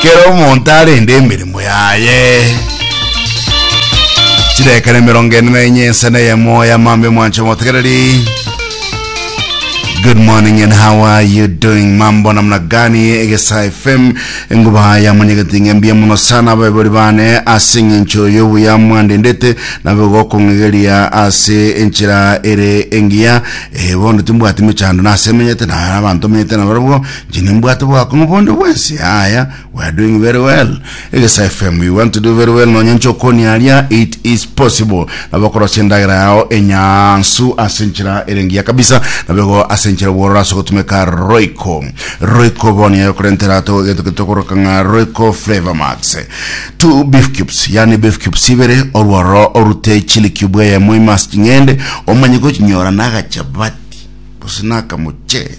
kera omonto arende emeremo yaye chirekana emerongo ene na enye ense na eyemo yamambe mwancho motegereri Good morning and how are you doing? Mambo namna gani? Egesa FM nguba ya manyagati ng'ambia muno sana abebori bane ase eng'encho y'obuya mwandendete nabo gokong'egeria ase enchera ere engiya eh, bono timbwati mechando nase menyete na abanto menyete nabarobwo Inche nimbwate obwakong'u bonde bwensi yaya we are doing very well egesa fm we want to do very well nonya nche okoni aria it is possible nabo okorosia endagera yao enyansu ase enchera ere engiya kabisa nabo igo ase enchera obwororo ase ogotumeka roiko roiko bono yaye okorentera ato egento getokoroka ng'a roiko flavor max two beef cubes yani beef cubes ibere orwororo orute chili cube eyemo imas ching'ende omanye gochinyora nagachabati gose nakamocheri